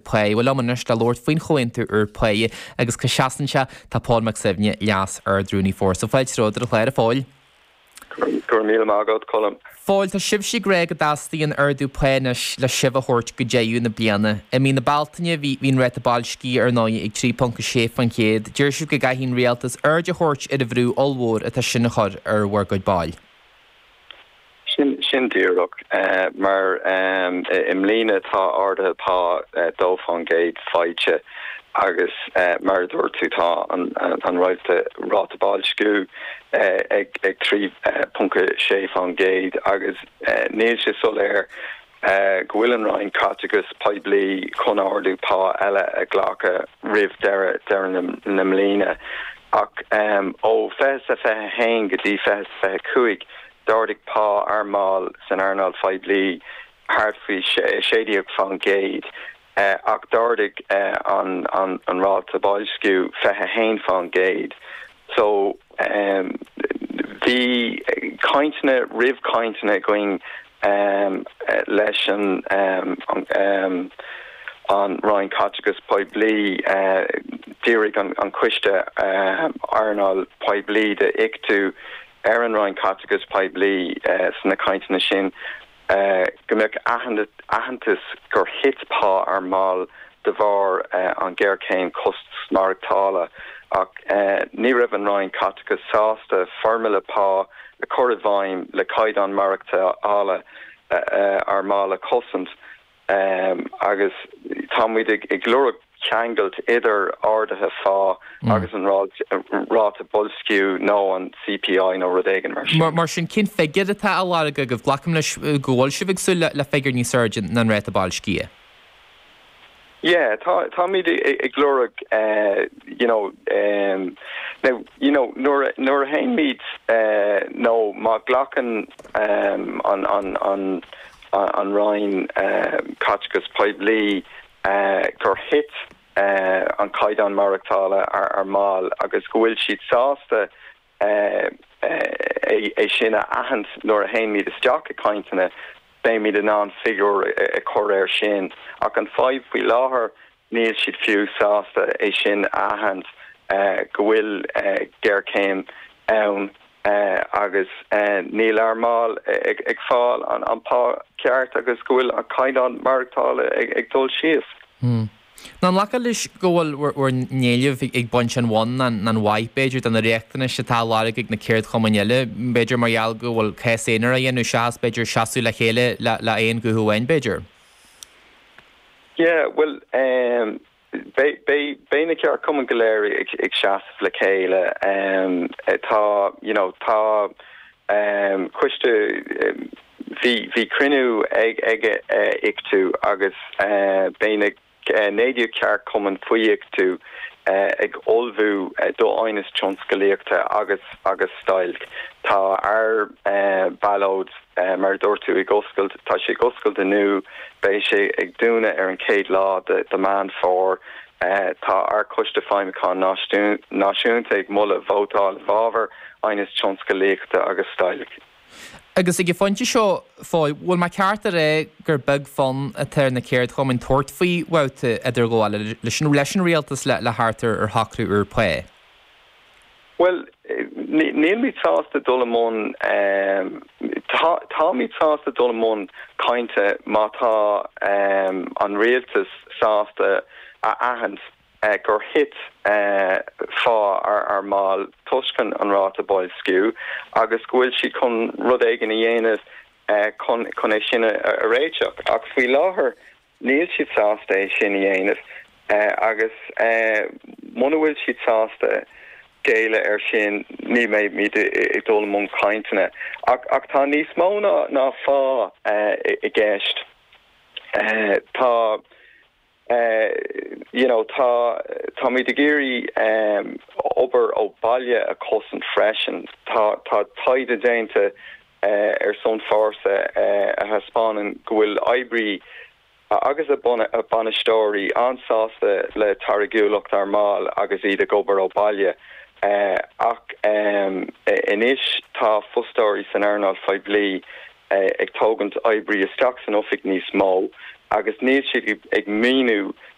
Pá. Bhuel, liom anois le labhairt faoin chomhaontú úr pá agus cá seasann sé. Tá Pól Mac Suibhne, Leas-Ardrúnaí Fórsa. Fáilte romhat ar an chlár. A Phóil. Go raibh míle maith agat, Colm. Phóil, tá sibhse ag rá go dteastaíonn ardú pá anois le sibh a thabhairt go deireadh na bliana. I mí na Bealtaine, bhí an ráta boilscithe, ar ndóigh, ag 3.6%. Deir sibh go gcaithfidh an rialtas aird a thabhairt ar an bhrú ollmhór atá sin a chur ar bhur gcuid ball. Sin díreach mar i mbliana tá arduithe pá 2% faighte agus mar a dúirt tú tá an ráta boilsciú ag 3.6% agus níl sé soiléir go bhfuil an Roinn Caiteachais Poiblí chun ardú pá eile a ghlacadh roimh dheireadh na mbliana. Ach ó 2021 go dtí 2025, d'ardaigh pá ár mball san earnáil phoiblí thart faoi 16 faoin gcéad, ach d'ardaigh an ráta boilsciú 21 faoin gcéad. So, em, bhí cainteanna roimh chainteanna againn, em, leis an, em, em, an Roinn Caiteachais Phoiblí, eh, dhírigh an, an Coiste, em, Earnáil Phoiblí de ICTU ar an Roinn Caiteachais Phoiblí, eh, sna cainteanna sin go mbeadh aitheantas gur thit pá ár mball de bharr an ghéarchéim costas maireachtála ach ní raibh an Roinn Caiteachais sásta foirmle pá a chur i bhfeidhm le caighdeán maireachtála ár mball a chosaint. Ehm, agus tá muid ag, ag lorg ceangailt idir arduithe phá agus an ráit, ráta boilsciú nó an CPI nó rud éigin mar sin. Mar sin, cén figiúr atá á lorg agaibh? Glacaim leis go bhfuil sibh ag súil le figiúr níos airde ná an ráta boilscithe? Yeah, tá, táimid ag, ag lorg eh, you know, ehm, now, you know, nuair a, nuair a théann muid eh, nó má ghlacann ehm, an, an, an, an Roinn Caiteachais Poiblí gur thit an caighdeán maireachtála ár mball agus go bhfuil siad sásta é sin a aithint nuair a théann muid isteach i gcainteanna, beimid in ann figiúr a chur air sin. Ach an fhadhb faoi láthair Níl siad fiú sásta é sin a aithint, go bhfuil géarchéim ann agus níl ár mball ag fáil an pá ceart agus go bhfuil an caighdeán maireachtála ag dul síos. Nó an nglacfá leis go bhfuil bhur n-éilimh ag baint an bhun, nó an mhaith, b'fhéidir, de na riachtanais atá á lorg ag na ceardchumainn eile, b'fhéidir mar gheall go bhfuil cás aonair á dhéanamh seachas, b'fhéidir, seasamh le chéile le aon ghuth amháin, b'fhéidir? Yeah, bhuel, em, beidh, beidh, beidh na ceardchumainn go léir ag, ag seasamh le chéile. Em, tá, you know, tá, em, coiste, bhí, bhí cruinniú ag, ag ICTU agus, eh, beidh na, eh, naoi déag ceardchumann faoi ICTU, eh, ag ullmhú do aighneas tionscalaíochta agus, agus stailc. Tá ár, eh, ballóid. Eh, mar a dúirt tú, ag oscailt, tá sé ag oscailt inniu, beidh sé ag dúnadh ar an chéad lá de, de Meán Fómhair. Eh, tá ár Coiste Feidhmiúcháin Náisiún, Náisiúnta ag moladh vótáil i bhfabhar aighneas tionscalaíochta agus stailc. Agus ag an phointe seo, Fáidh, bhfuil mé ceart a rá gur beag fonn atá ar na ceardchumainn tabhairt faoi bhabhta idirghabhála leis an, leis an rialtas le, le thart ar, ar shocrú úr pá? Bhuel, nílmid sásta dul i mbun, táimid sásta dul i mbun cainte má tá an rialtas sásta a aithint gur thit pá ár mball toisc an ráta boilsciú agus go bhfuil siad chun rud éigin a dhéanamh chun é sin a réiteach. Ach faoi láthair, Níl siad sásta é sin a dhéanamh agus muna bhfuil siad sásta géilleadh ar sin ní bheimid ag dul i mbun cainteanna. Ach tá níos mó ná pá i gceist. Tá, you know, tá, táimid ag iarraidh obair ó bhaile a chosaint freisin. Tá taighde déanta ar son Fórsa a thaispeánann go bhfuil oibrí agus a bainisteoirí an-sásta le táirgiúlacht ár mball agus iad ag obair ó bhaile, ach anois tá fostóirí san earnáil phoiblí ag tógaint oibrí isteach san oifig níos mó agus níl siad ag míniú